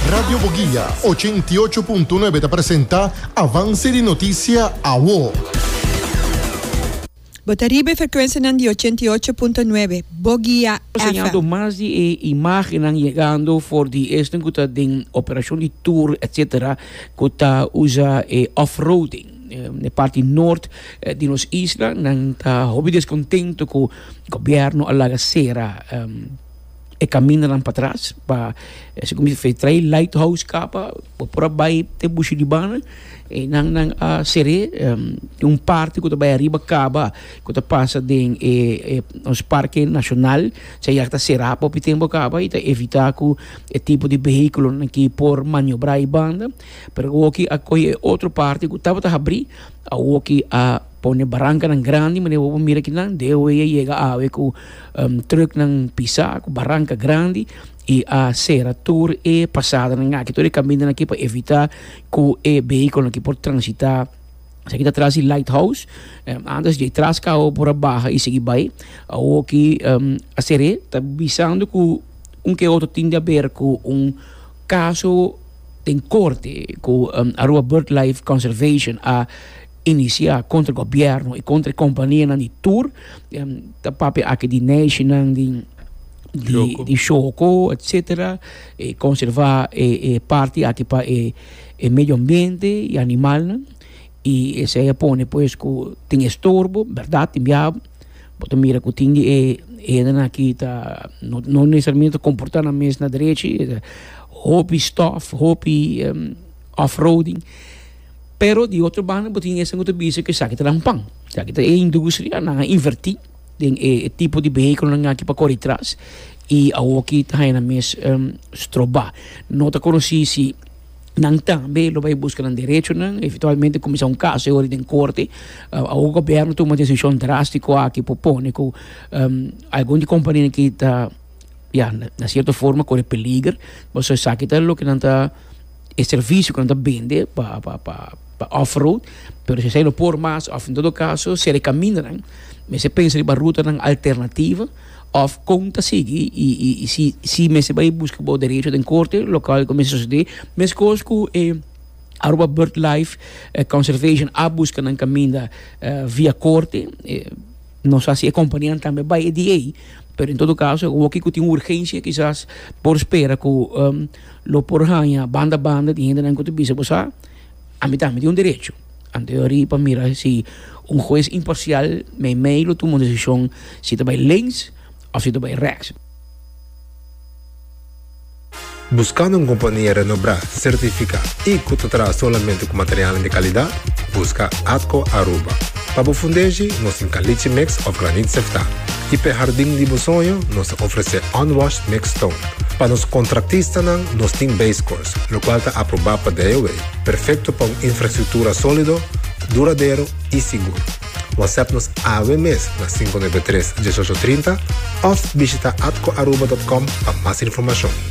Radio Boguia ochenta i ocho punto nuebe ta presenta Avance di Noticia Awo. Bo ta riba e frecuencianan di ochenta i ocho punto nuebe Boguia FM. Enseñando mas di e imagennan yegando for di esnan cu ta den operacion di tour etc. Cu ta usa e off-roading n'e parti noord di nos isla. Nan ta hopi descontento cu gobierno a laga cera. E kamindanan patras pa esei ku mi fei trae lighthouse kapa por por a bai te bushi di bana e nan nan a ser'é tin un parti ku ta bai ariba kaba ku ta pasa den e e nos parke nashonal esei yak ta será pa hopi tempu kaba i ta evitá ku e tipo di behikulonan ki por maniobrá i banda pero awoki a kohe e otro parti ku tabata habrí awoki a pone barankanan grandi manera ku bo mira aki nan deo ei a yega awe ku. Truknan pisá ku baranka grandi i a sera tur e pasadanan aki, tur e kamindanan aki pa evitá ku e behikolnan aki por transitá. Esaki ta tras di Lighthouse. Antes dje tras kau por a baha i sigui bai. Awoki a ser e ta bisando ku un ku e otro tin di aber ku un kaso den korte ku Aruba Birdlife Conservation a. inisiá kontra e gobièrnu i kontra e kompanianan di tur, ta papia aki di neishinan di di shoko etsetera, e konservá e e parti aki pa e e medio ambiente i animalnan i esei a pone pues ku tin estorbo, bèrdat tin biabu, bo ta mira ku tin di e edennan aki ta no no nesesariamente ta komportá nan mes na derechi, hopi stòf, hopi off-roading. Pero di otro banda bo tin esnan ku ta bisa ku esaki ta nan pan, esaki ta e industria, nan a inverti den e tipo di behekelonan aki pa kore tras i awoki ta haña nan mes stroba. No ta konosí si nan tambe lo bai buska nan derechonan, eventualmente kuminsá un kaso e wòrdu den korte. Awor gobierno tuma desishon drástiko aki por pone ku algun di kompania aki ta, ya, na sierto forma kore peliger, pasobra esaki ta loke nan ta. e servisio ku nan ta bende pa pa pa pa off-road, pero si esei no por mas òf en todo kaso ser e kamindanan mester pensa riba rutanan alternativo òf kon ta sigui i i i si si mester bai buska bo derecho den korte lokal ku mester sosodé meskos ku e Aruba Bird Life Conservation a buska nan kaminda via korte nos a hasi e kompanianan tambe bai e di ei pero en todo kaso woki ku tin urgensha kisas por spera ku. Lo por haña banda banda di hendenan ku ta bisa bo sa ami tambe tin un derecho. Anto yo a ri pa mira si un hues imparsial meimei lo tuma un desishon si ta bai links òf si ta bai rèks. Buskando un kompania renobrá, sertifiká i ku ta traha solamente ku materialnan di kalidat? Buska ATCO Aruba. Pa bo fundeshi nos tin caliche mix of granite sefta y p'e hardin di bo soño nos ta ofrece unwashed mixed stone. Pa nos contractistanan nos tin base course locual ta aproba pa DIOA, perfecto pa un infrastructura solido, duradero y sigur. Whatsapp nos awe mes na sinku nebe tres dieshocho trinta of bishita atcoaruba.com pa mas informacion.